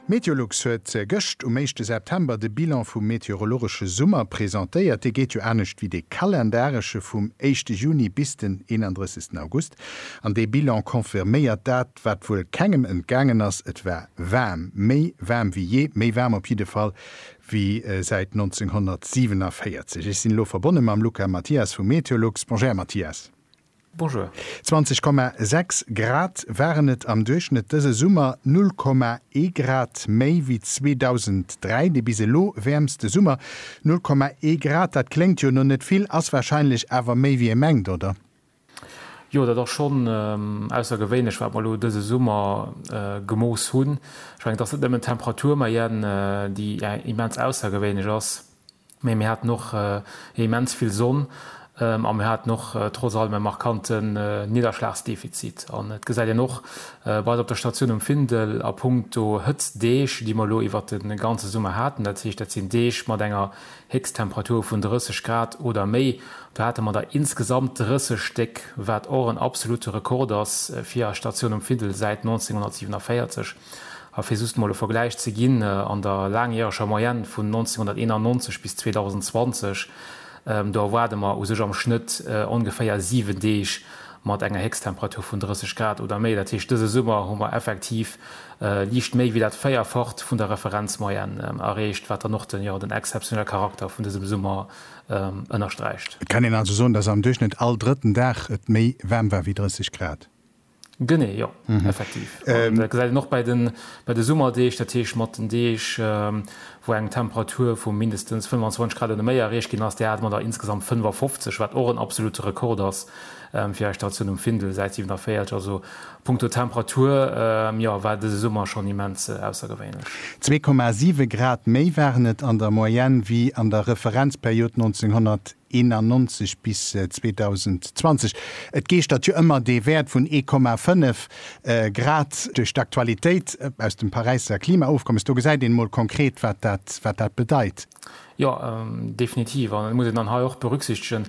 Meteolux huet gëscht um éischte September de Bilan vum meteorologesche Summer presentéiert. Dee geet jo anescht wéi dee kalendaresche vum éischte Juni bis den 31 August. An dee Bilan confirméiert dat, wat wuel kengem entgaangen ass, et war waarm, méi waarm wéi jee, méi waarm op jidde Fall wéi säit 1947. Ech sinn elo verbonne mam Luca Mathias vu Meteolux. Bonjour Här Mathias. 20,6 Grad waren et am Duerchschnëtt dëse Summer, 0,1 Grad méi wéi 2003, de bis elo wäermste Summer. 0,1 Grad, dat kléngt jo no net vill, ass warscheinlech awer méi wéi ee mengt, oder? Jo, dat ass schonn aussergewéinlech, wat mer elo dëse Summer gemooss hunn. Ech mengen, et ass net nëmmen d'Temperatur, mä déi immens aussergewéinlech ass. Mee mir haten och immens vill Sonn a mir haten och trotz allem e markante Nidderschlagsdefizit. An et gesäit een och bei eis op der Statioun um Findel a punkto Hëtztdeeg, déi mer elo iwwert de ganze Summer haten, dat heescht dat sinn Deeg mat enger Héchsttemperatur vun 30 Grad oder méi, do hate mer der insgesamt 30 Stéck, wat och en absolute Rekord ass fir eis Statioun um Findel säit 1947. A fir just mol e Vergläich ze ginn, an der laangjäreger Moyenne vun 1991 bis 2020, do erwaarde mer u sech am Schnëtt ongeféier siwen Deeg mat enger Héchsttemperatur vun 30 Grad oder méi. Dat heescht, dëse Summer hu mer effektiv liicht méi wéi dat Véierfacht vun der Referenzmoyenne erreecht, wat dann och den, jo, den exzeptionelle Charakter vun dësem Summer ënnersträicht. Et kann een also soen, dass am Duerchschnëtt all drëtten Dag et méi waarm war wéi 30 Grad. Genee, jo, effektiv. An dat gesäit een och bei de Summerdeeg, dat heescht mat den Deeg, wou eng Temperatur vu mindestens 25 Grad oder méi erreecht ginn ass, där hate mer der insgesamt 55, wat och en absolute Rekord ass fir eis Station um Findel, Säit 47. Also punkto Temperatur, jo, war dëse Summer schonn immens aussergewéinlech. Zwee Komma siwe Grad méi waren et an der Moyenne wéi an der Referenzperiod 1900. 91 bis 2020. Et geeschtert jo ëmmer dee Wäert vun 1,5 Grad duerch d'Aktualitéit aus dem Paräisser Klimaofkommes. Do gesäit een emol konkret, wat dat, wat dat bedeit. Jo, definitiv. An et muss een dann hei och berücksichtegen,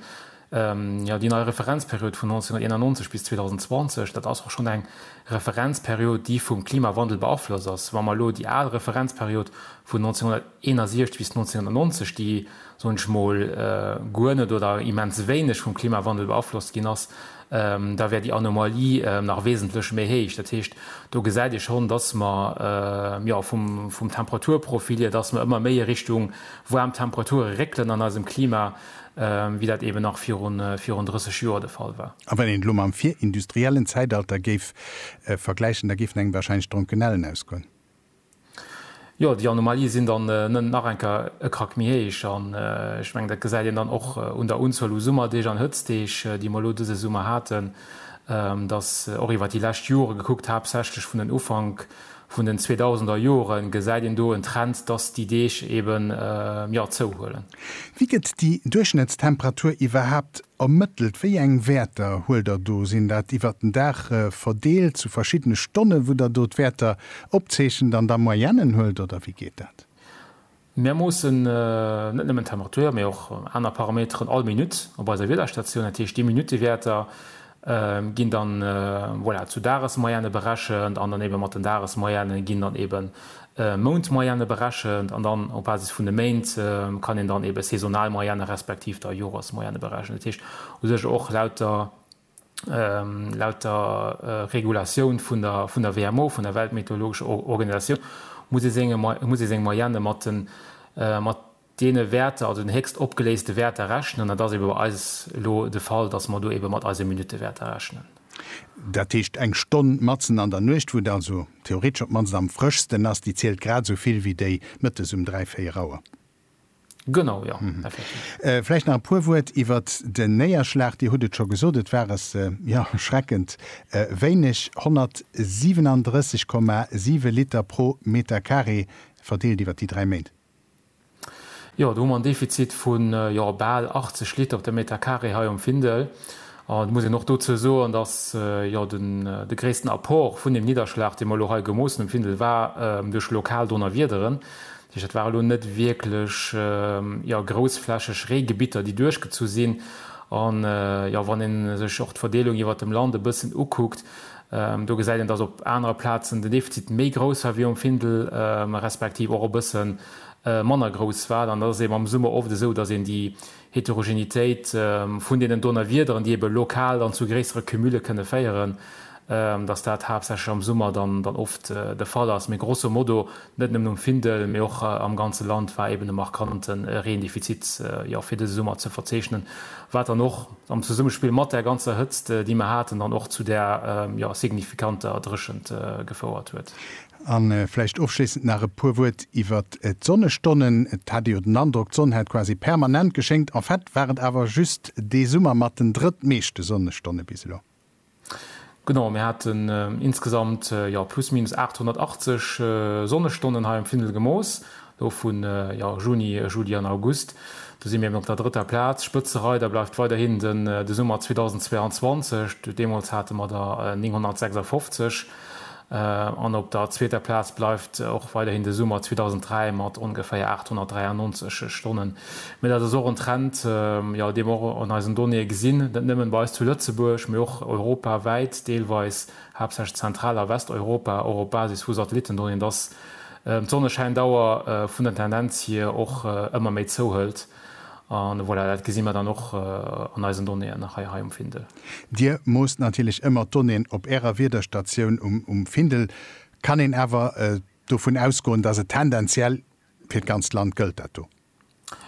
jo, déi nei Referenzperiod vun 1991 bis 2020, dat ass och schonn eng Referenzperiod, déi vum Klimawandel beaflosst ass. Wa mer elo déi al Referenzperiod vun 19. 61 bis 1990, déi, soen ech mol, guer net oder immens wéineg vum Klimawandel beaflosst ginn ass, da wär déi Anomalie nach wesentlech méi héich. Dat heescht, do gesäit ee schonn, dass mer, jo, vum Temperaturprofil hier, dass mer ëmmer méi a Richtung waarm Temperature réckelen an eisem Klima, wéi dat eeben nach virun 30 Joer de Fall war. A wann een elo mam virindustriellen Zäitalter géif vergläichen, da géifen engem warscheinlech d'Dronkenellen ausgoen. Jo, déi Anomalie sinn dann nëmmen nach eng Kéier e Krack méi héich. An ech mengen, dat gesäit een dann och un der Unzuel u Summerdeeg an Hëtzdeeg, déi mer elo dëse Summer haten, dass och iwwer déi lescht Jore gekuckt, haaptsächlech vun den Ufank vun den zweedausender Jore gesäit een do en Trend, dass déi Deeg eeben, jo, zouhuelen. Wéi gëtt déi Duerchschnëttstemperatur iwwerhaapt Ermëttelt, wéi eng Wäerter huelt der do? Sinn dat iwwert den Dag verdeelt zu verschiddene Stonnen, wou der do d'Wäerter opzeechent an da Moyennen huelt, oder wéi geet dat? Mir moossen net nëmmen d'Temperature, mee och aner Parameteren all Minutt op eiser Wiederstatioun. Dat heescht, déi Minuttewäerter ginn dann, voilà, zu Dagesmoyenne berechent an dann eebe mat den Dagesmoyenne ginn dann eeben Mount-Moyenne berechent an dann op Basis vun de Méint kann een dann eebe saisonal Moyenne respektiv da Joresmoyenne berechnen. Dat heescht u sech och laut der Regulatioun vun der WMO, vun der Weltmeteorologescher Organisatioun, muss ee seng Moyenne mat deene Wäerter, also den héchst opgeléiste Wäerter rechnen. Dat ass ebe bei eis elo de Fall, dass mer do ebe mat eise Minuttewäerter rechnen. Dat heescht, eng Stonn matzen an der Nuecht, wou et also theoretesch op d'mannst am frëschsten ass, déi zielt grad esou vill wéi déi mëttes um dräi, véier Auer. Genau, jo, effektiv. Vläicht nach e puer Wuert iwwert den Néierschlag. Dir hutt et scho gesot, et war es, jo, erschreckend wéineg, 137,7 Liter pro Meterkaree, verdeelt iwwert déi dräi Méint. Jo, do hu mer en Defizit vu jo bal 80 Liter op de Meter carré hei um Findel. An et muss een och dozou soen, datt jo de gréissten Apport vun deem Nidderschlag, dee mer elo hei gemoossen um Findel, war duerch lokal Donnerwiederen. Dat heescht, dat ware lo net wierklech jo groussflächeg Reegebitter, déi duerchgezu sinn. An jo, wann ee sech och d'Verdeelung iwwert dem Land e bëssen ukuckt, Do gesäit een, dass op anere Plazen den Defizit méi grouss war wéi um Findel, respektiv och e bësse manner grouss war. An da ass et eben am Summer oft esou, dass een déi Heterogenitéit vun deenen Donnerwiederen, déi ebe lokal dann zu gréissere Cumule kënne féieren, dass dat haaptsächlech am Summer dann oft de Fall ass. Mee grosso modo Net nëmmen um Findel, mee och am ganze Land war eben e markante Reendefizit fir dëse Summer ze verzeechnen, wat dann och am Zesummespill mat där ganzer Hëtzt, déi mer haten, dann och zu där signifikanter Dréchent gefouert huet. A vläicht ofschléissend nach e puer Wuert iwwert d'Sonnestonnen. Et hat ee jo den Androck, d'Sonn hätt quasi permanent geschéngt. En fait war et awer just dee Summer mat den drëttmeeschte Sonnestonne bis elo. Genau, mir haten insgesamt jo plus minus 880 Sonnestonnen hei am Findel gemooss, do vu jo Juni, Juli an August. Do si mir eben op der drëtter Plaz. Spëtzereider bleift weiderhin de Summer 2022, deemools hate mer der 956. An op der zweeter Plaz bleift och weiderhin de Summer 2003 mat ongeféier 893 Stonnen. Mee dat ass och en Trend, jo, dee mer och an eisen Donnéeë gesinn, net nëmmen bei eis zu Lëtzebuerg, mee och europawäit, deelweis haaptsächlech Zentral a Westeuropa, och op Basis vu Satellitendonnéeën, dass d'Sonneschäindauer vun der Tendenz hier och ëmmer méi zouhëlt. Voilà, dat gesi mer dann och an eisen Donnéeën nach hei um Findel. Dir moosst natierlech ëmmer d'Donnéeën op Ärer Wiederstatioun um Findel. Kann een awer dovun ausgoen, dass et tendenziell fir d'ganzt Land gëllt, dat do?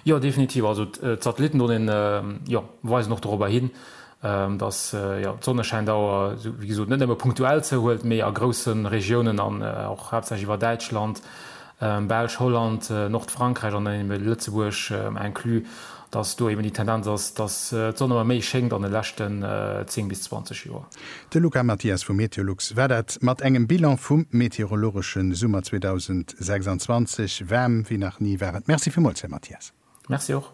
Jo, definitiv. Also d'Satellitendonnéeën, jo, weisen och dorobber hin. dass d'Sonneschäindauer, wéi gesot, net nëmme punktuell zouhuelt, mee a grousse Regiounen an och haaptsächlech iwwer Däitschland, Belsch, Holland, Nordfrankräich an dann eeben Lëtzebuerg inclus, dass do eeben déi Tendenz ass, dass d'Sonn ëmmer méi schéngt an de leschten 10 bis 20 Joer. De Luca Mathias vu Meteolux war dat mat engem Bilan vum meteorologesche Summer 2026. Waarm wéi nach ni war et. Merci villmools, Här Mathias. Merci och.